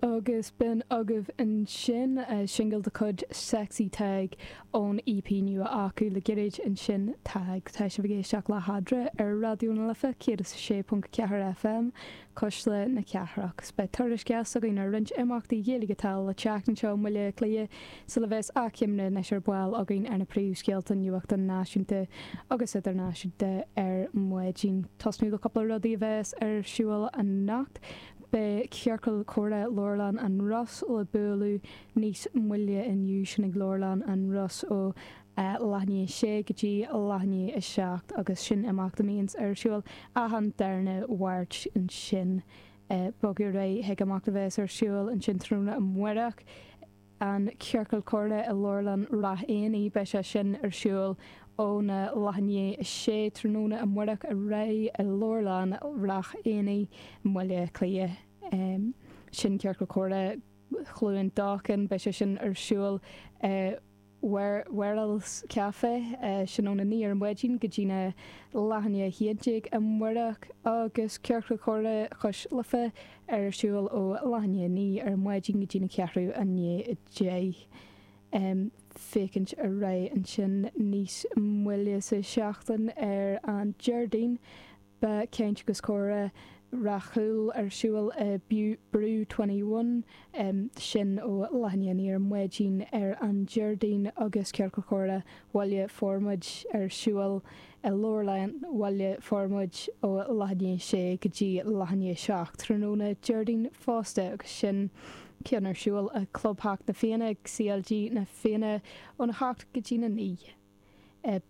Agus b'in agaibh ansin singil de chuid Sexy Tadhg ón EP nua acu, le gairid ansin Tadhg. Tá sibh ag éisteacht le hEadra ar Raidió na Life 106.4 FM, Cuisle na Cathrach. Beidh tuairisc dheas againn ar roinnt imeachtaí Gaeilge atá le teacht anseo i mBaile Átha Cliath, Sula bheas athchoimre anois ar ball againn ar na príomhscéalta nuachta náisiúnta agus idirnáisiúnta ar maidin, tosnú le cúpla rudaí a bheas ar siúl anocht, beidh Ciorcal Comhrá Leabharlann an Ros le bualadh níos moille inniu, sin ag Leabharlann an Ros ó leath i ndiaidh a sé go dtí leath i ndiaidh a seacht agus sin imeacht a mbíonns ar siúl achan darna Mháirt, ansin bogadh ar aghaidh chuig imeacht a bheas ar siúl ansin tráthnóna amáireach. an Ciorcal Comhrá i Leabharlann Rath Éanaigh. Beidh sé sin ar siúl ón a leath i ndiaidh a sé tráthnóna amáireach ar aghaidh i Leabharlann Rath Éanaigh i mBaile Átha Cliath sin Ciorcal Comhrá Chluain Dolcáin. Beidh sé sin ar siúl i Werrell's Café sin ón a naoi ar an maidin go dtína leath i ndiaidh a haon déag amáireach agus Ciorcal Comhrá Chois Life ar siúl ó leath i ndiaidh a naoi ar maidin go dtí na ceathrú i ndiaidh a deich ag féachaint ar aghaidh ansin níos moille sa seachtain ar an Déardaoin beidh Caint agus Comhrá Ráth Cúil ar siúl i Brew Twenty One sin ó leath i ndiaidh a naoi ar maidin ar an Déardaoin agus Ciorcal Comhrá Bhaile Formaid ar siúl I Leabharlann Bhaile Formaid ó leath i ndiaidh a 6 go dtí leath i ndiaidh a 7 tráthnóna Déardaoin fosta agus sin ceann ar siúl i gclubtheach Na Fianna CLG Na Fianna ón 8 go dtí'n 9.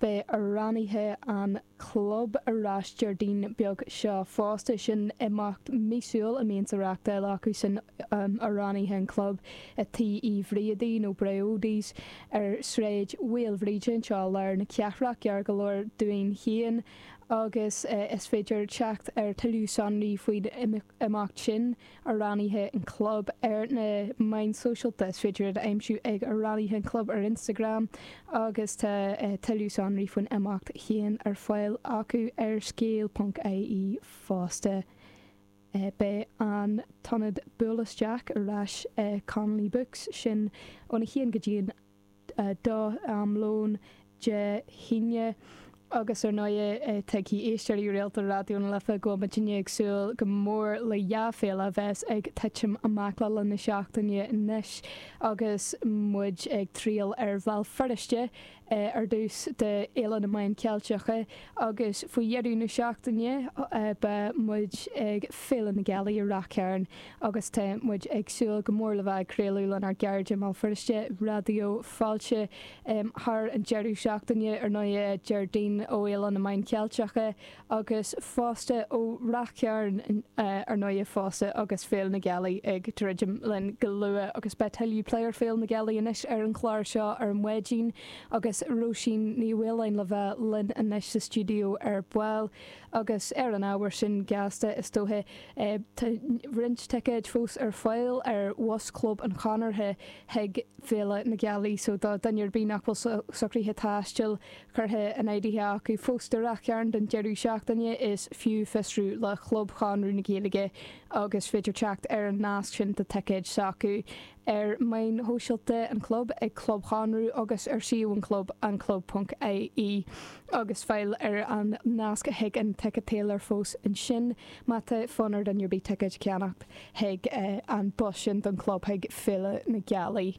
Beidh amhránaithe an chlub ar ais Déardaoin beag seo fosta. Sin imeacht míosúil a mbíonns á reachtáil acu sin Amhránaithe an Chlub i Tí Uí Bhríodaí nó Briody's. ar Shráid Mhaoilbhríde anseo, lár na cathrach, gar go leor dúinn féin, agus is féidir teacht ar tuilleadh sonraí faoin imeacht sin, Amhránaithe an Chlub, ar na meáin sóisialta, is féidir iad a aimsiú ag Amhránaithe an Chlub ar Instagram, agus tá tuilleadh sonraí faoin imeacht féin ar fáil acu ar scéal.ie fosta. Beidh an t-ionad buail isteach ar ais ag Connolly Books, sin ón 1 go dtí an 2 am lóin Dé hAoine, agus ar ndóigh tuigfidh éisteoirí rialta Raidió na Life go bhfuil muidinne ag súil go mór le dhá féile a bheas ag titim amach le linn na seachtaine anois agus muid ag triall ar Bhéal Feirste ar dtús d'Fhéile na Meán Ceilteach agus faoi dheireadh na seachtaine beidh muid ag Féile na Gealaí i Rath Cairn agus tá muid ag súil go mór le bheith ag craoladh lenár gcairde i mBéal Feirste, Raidió Fáilte, thar an deireadh seachtaine, ar ndóigh Déardaoin ó Fhéile na Meán Ceilteach. agus fosta ó Rath Chairn, ar ndóighe, fosta agus Féile na Gealaí ag druidim linn go luath agus beidh tuilleadh plé ar Féile na Gealaí anois ar an chlár seo ar maidin agus Róisín Ní Mhaoláin le bheith linn anois sa stiúideo ar ball agus ar an ábhar sin gasta, is dóiche, tá roinnt ticéid fós ar fáil ar Bhus Chlub an Chonartha chuig Féile na Gealaí so do dhuine ar bith nach bhfuil socruithe taistil curtha in áirithe acu fós do Ráth Chairn don deireadh seachtaine, is fiú fiosrú le Club Chonradh na Gaeilge agus is féidir teacht ar an nasc sin do thicéid s'acu ar mheáin shóisialta an Chlub ag Club Chonradh agus ar suíomh an Chlub, anclub.ie, agus fáil ar an nasc chuig an ticéadailar fós ansin má tá fonn ar dhuine ar bith ticéad a cheannacht chuig an bhus sin don Chlub chuig Féile na Gealaí.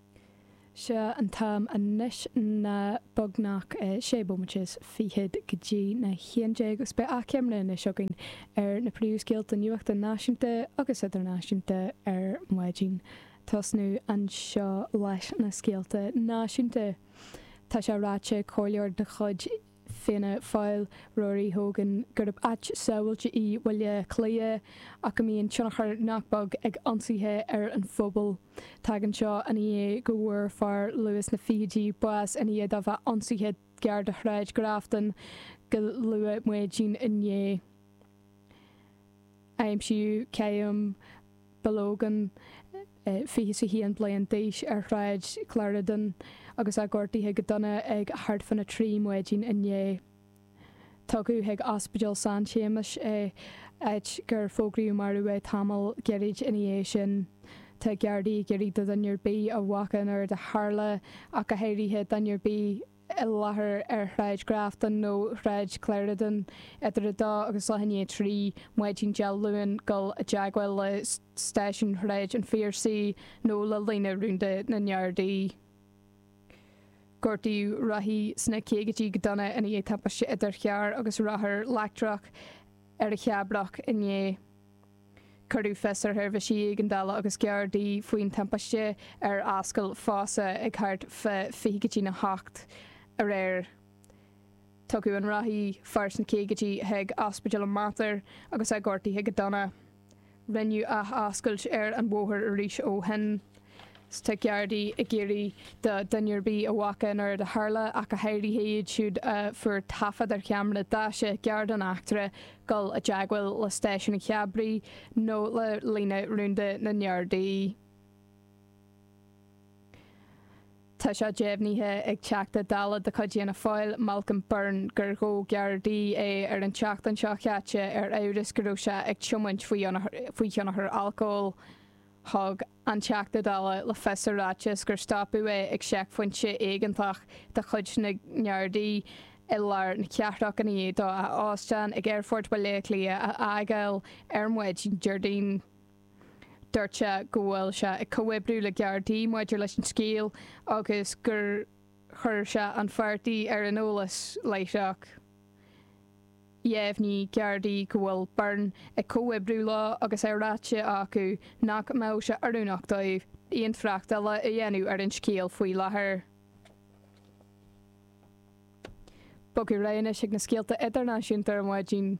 Seo an t-am anois ná beagnach sé bomaite is fichead go dtí na haon déag agus beidh achoimre anois againn ar na príomhscéalta nuachta náisiúnta agus idirnáisiúnta ar maidin. Tosnú anseo leis na scéalta náisiúnta. Tá sé ráite ag comhairleoir de chuid. Fianna Fáil, Rory Hogan, gurb áit sábháilte í Baile Átha Cliath ach go mbíonn tionchar nach beag ag ionsaithe ar an phobal. Tagann seo ina dhiaidh go bhfuair fear luath sna fichidí bás ina dhiaidh dó bheith ionsaithe gar do Shráid Grafton go luath maidin inné. Aimsíodh. Bill Hogan, 21 bliain d'aois, ar Shráid Clarendon agus é gortaithe go dona ag thart fána 3 maidin inné. Tugadh chuig Ospidéal San Séamas é, áit gur fógraíodh marbh é tamall gairid ina dhiaidh sin. Tá Gardaí ag iarraidh ar dhuine ar bith a bhfaca an rud a tharla ach go háirithe duine ar bith i láthair ar Shráid Grafton nó Shráid Clarendon idir 2 agus leath i ndiaidh 3, maidin Dé Luain dul i dteagmháil le Stáisiún Shráid an Phiarsaigh nó le líne rúnda na nGardaí. Gortaíodh rothaí sna caogaidí go dona ina dhiaidh timpiste idir charr agus rothar leictreach ar an Chabrach inné. Cuireadh fios ar sheirbhísí éigeandála agus Gardaí faoin timpiste ar Ascaill Fassaugh ag thart fá 20 go dtí a hocht aréir. Tugadh an rothaí, fear sna caogaidí, chuig Ospidéal an Mater agus é gortaithe go dona. Rinneadh athoscailt ar an bhóthar arís ó shin. 's tá Gardaí ag iarraidh ar dhuine ar bith a chonaic an rud a tharla, ach go háirithe iad siúd a fuair taifead ar cheamara daise gar don eachtra, dul i dteagmháil le Stáisiún an Chabraigh nó le Líne Rúnda na nGardaí. Tá sé deimhnithe ag Teachta Dála de chuid Fhianna Fáil, Malcolm Byrne, gur ghabh Gardaí é ar an tseachtain seo caite ar amhras go raibh sé ag tiomáint faoi thionchar alcóil. Thug an Teachta Dála le fios i ráiteas gur stopadh é ag seicphointe éigeantach de chuid na nGardaí i lár na cathrach i ndiaidh dó a óstán ag Aerfort Bhaile Átha Cliath a fhágáil ar maidin Déardaoin. Dúirt sé go bhfuil sé ag comhoibriú le Gardaí maidir leis an scéal agus gur chuir sé an páirtí ar an eolas láithreach. Dheimhnigh Gardaí go bhfuil Byrne ag comhoibriú leo agus é ráite acu nach mbeadh sé oiriúnach dóibh aon trácht eile a dhéanamh ar an scéal faoi láthair. Bogfaidh ar aghaidh anois chuig na scéalta idirnáisiúnta ar maidin.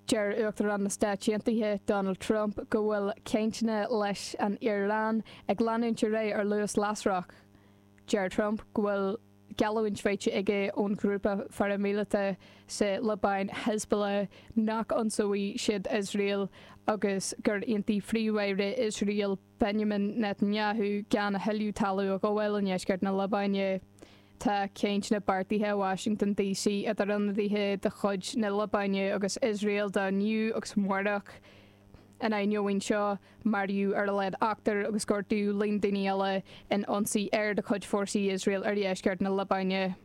Deir Uachtarán na Stát Aontaithe Donald Trump go bhfuil cainteanna leis an Iaráin ag leanúint ar aghaidh ar luas lasrach. Deir Trump go bhfuil. geallúint faighte aige ón ghrúpa pharaimíleata sa Liobáin, Hezbollah, nach n-ionsóidh siad Iosrael agus gur aontaigh Príomh-Aire Iosrael Benjamin Netanyahu gan a thuilleadh talún a ghabháil i ndeisceart na Liobáine. Tá cainteanna beartaithe i Washington DC idir ionadaithe de chuid na Liobáine agus Iosrael do inniu agus amárach. In ainneoin seo. maraíodh ar a laghad ochtar agus gortaíodh líon daoine eile in ionsaí aeir de chuid fórsaí Iosrael ar dheisceart na Liobáine.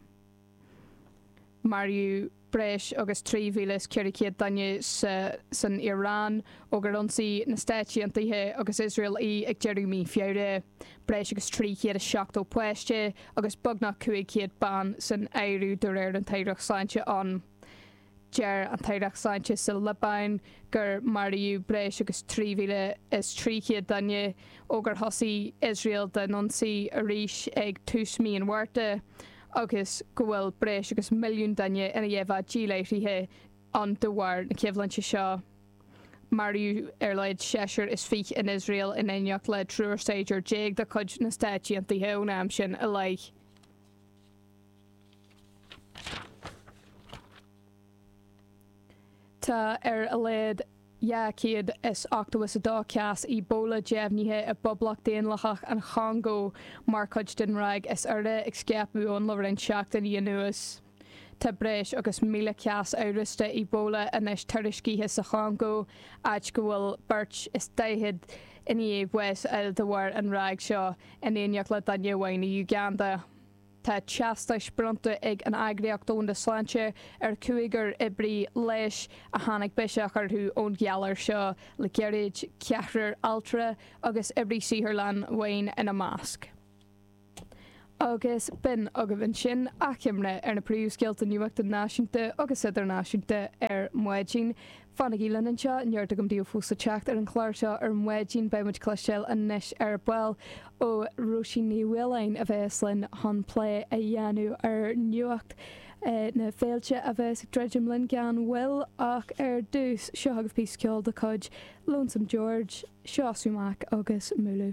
Maraíodh breis agus 3,400 duine sa san Iaráin ó gur ionsaigh na Stáit Aontaithe agus Iosrael í ag deireadh mhí Feabhra, breis agus 370 páiste agus beagnach 500 bean san áireamh de réir an Aireacht Sláinte ann. Deir an Aireacht Sláinte sa Liobáin gur maraíodh breis agus 3,300 duine ó gur thosaigh Iosrael á n-ionsaí arís ag tús mí an Mhárta agus go bhfuil breis agus milliún duine i ndiaidh a bheith díláithrithe ann de bharr na coimhlinte seo. Maraíodh ar a laghad seisear is fiche in Iosrael in éineacht le triúr saighdiúir déag de chuid na Stáit Aontaithe ón am sin i leith. Tá ar a laghad 282 cás Ebola deimhnithe i bPoblacht Daonlathach an Chongó mar chuid den ráig is úire ag scaipeadh ann le roinnt seachtainí anuas. Tá breis agus 1,000 cás amhrasta Ebola anois tuiriscithe sa Chongó, áit go bhfuil beirt is daichead i ndiaidh bháis a fháil de bharr an ráig seo, in éineacht le duine amháin i Uganda. Tá teastais bronnta ag an Eagraíocht Dhomhanda Sláinte ar chúigear oibrí leighis a tháinig biseach orthu ón ghalar seo le gairid, ceathrar altra agus oibrí saotharlann amháin ina measc. Agus b'in agaibh ansin achoimre ar na príomhscéalta nuachta náisiúnta agus idirnáisiúnta ar maidin. Fanaigí linn anseo, neart agam daoibh fós le teacht ar an chlár seo ar maidin. Beidh muid ag cloisteáil anois ar ball ó Róisín Ní Mhaoláin a bheas linn chun plé a dhéanamh ar nuacht na féilte a bheas ag druidim linn gan mhoill ach ar dtús, seo agaibh píosa ceoil de chuid Lonesome George, seo Sumac agus Mula.